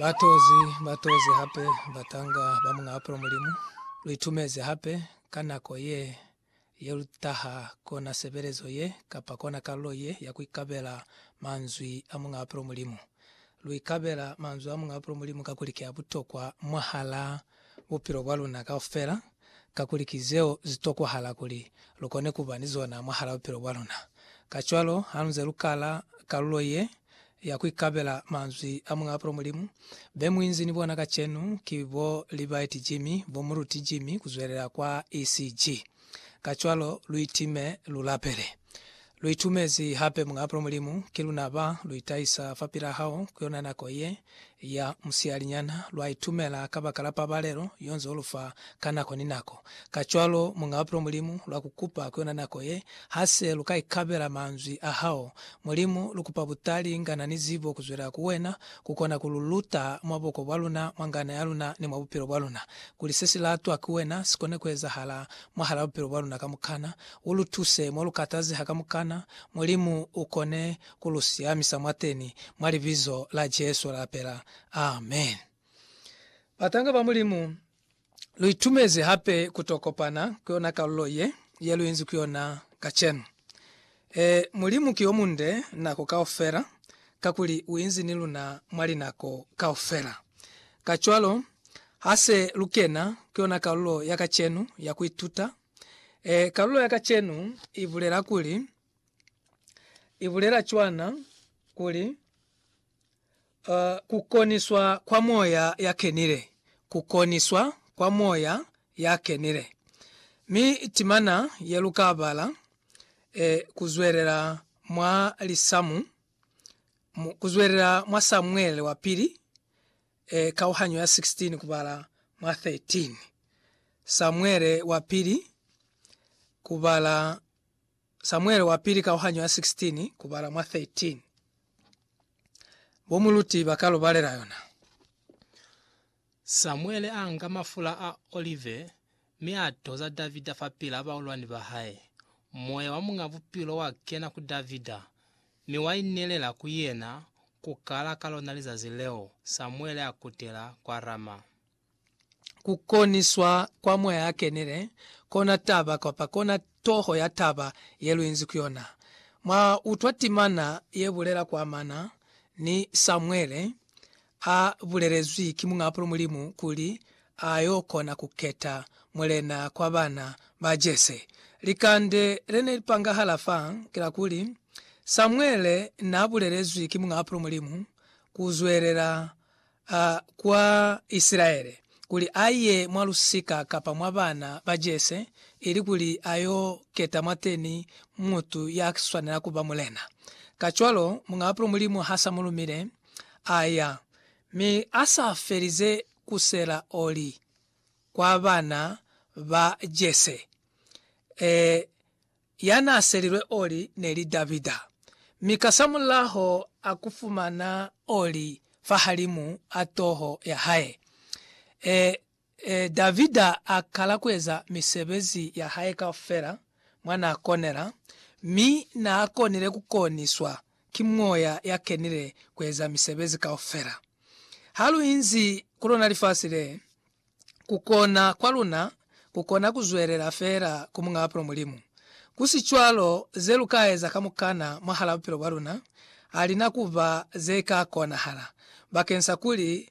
Batozi, batozi hape batanga ba Muñ'a Bupilo Mulimu, lu itumezi hape ka nako ye, ye lu taha kona sebelezo ye kapa kona kalulo ye ya ku ikabela manzwi a Muñ'a Bupilo Mulimu. Lu ikabela manzwi a Muñ'a Bupilo Mulimu kakuli ki a butokwa mwahal'a bupilo bwa luna kaufela, kakuli ki zeo zi tokwahala kuli lu kone ku ba ni zona mwahal'a bupilo bwa luna. Kacwalo, ha lu nze lu kala kalulo ye ya ku ikabela manzwi a Muñ'a Bupilo Mulimu, be mu inzi ni bona kacenu ki bo Libaiti Jimmy, bo Muruti Jimmy, ku zwelela kwa ECG. Kacwalo lu itime, lu lapele. Lu itumezi hape Muñ'a Bupilo Mulimu, ki luna ba lu itahisa fapil'a hao ku yona nako ye ya musiyalinyana. Lwa itumela kabakala pabalelo yo nze u lu fa ka nako ni nako. Kacwalo Muñ'a Bupilo Mulimu lwa ku kupa ku yona nako ye, Ha se lu ka ikabela manzwi a hao, Mulimu, lu kupa butali, ngana ni zibo ku zwelela ku wena, ku kona ku lu luta mwa boko bwa luna, mwa ngana ya luna, ni mwa bupilo bwa luna. kuli se si latwa ki wena si kone ku ezahala mwahal'a bupilo bwa luna kamukana. U lu tuse mo lu katazeha kamukana. Mulimu u kone ku lu siamisa mwateni, mwa Libizo la Jesu ra lapela. Amen. Batanga ba Mulimu, lu itumezi hape ku to kopana ku yona kalulo ye, ye lu inzi ku yona kacenu. Ee, Mulimu ki yomunde nako kaufela, kakuli uinzi ni luna mwa linako kaufela. Kacwalo, hase lukena ku yona kalulo ya kacenu ya kuituta, ee, kalulo ya kacenu ibulela kuli, ibulela cwana kuli, A. Ku koniswa kwa Moya ya Kenile. Ku koniswa kwa Moya ya Kenile. Mi timana ye lu ka bala e ku zwelela mwa lisamu, mu, ku zwelela mwa Samuele wa Pili, e, kauhanyo ya 16 kubala mwa 13. Samuele wa Pili, kubala Samuele wa Pili kauhanyo ya 16 kubala mwa 13. Bo muluti ba ka lu balela yona. Samuele a nga mafula a olive mi a toza Davida fapil'a baulwani ba hae. Moya wa Muñ'a Bupilo wa kena ku Davida, mi wa inelela ku yena ku kala ka lona lizazi leo Samuele a kutela kwa Rama. ku koniswa kwa Moya a Kenile, kona taba, kapa kona toho ya taba ye lu inzi ku yona. Mwa utwa timana ye bulela kwa mana ni Samuele, a bulelezwi ki Muñaapulo Mulimu kuli a yo kona ku keta mulena kwa bana ba Jese. Likande le ne li pangahala fa ki la kuli, Samuele n'a bulelezwi ki Muñaapulo Mulimu ku zwelela a kwa Isilaele, kuli a ye mwa lusika kapa mwa bana ba Jese, ilikuli a yo keta mwateni mutu ya swanela ku ba mulena. Kacwalo, Muñ'a Bapilo Mulimu ha s'a mu lumile, a ya, mi a sa felize ku sela oli kwa bana ba Jese, ee, ya n'a selilwe oli ne li Davida, mi kasamulaho a ku fumana oli fahalimu a toho ya hae. E, e, Davida a kala ku eza misebezi ya hae kaufela mwa n'a konela, mi n'a konile ku koniswa ki Moya ya Kenile ku eza misebezi kaufela. Ha lu inzi ku lona lifasi le, ku kona kwa luna ku kona ku zwelela fela ku Muñ'a Bupilo Mulimu. Ku si cwalo, ze lu ka eza kamukana mwahal'a bupilo bwa luna ha li na ku ba ze ka konahala bakeñsa kuli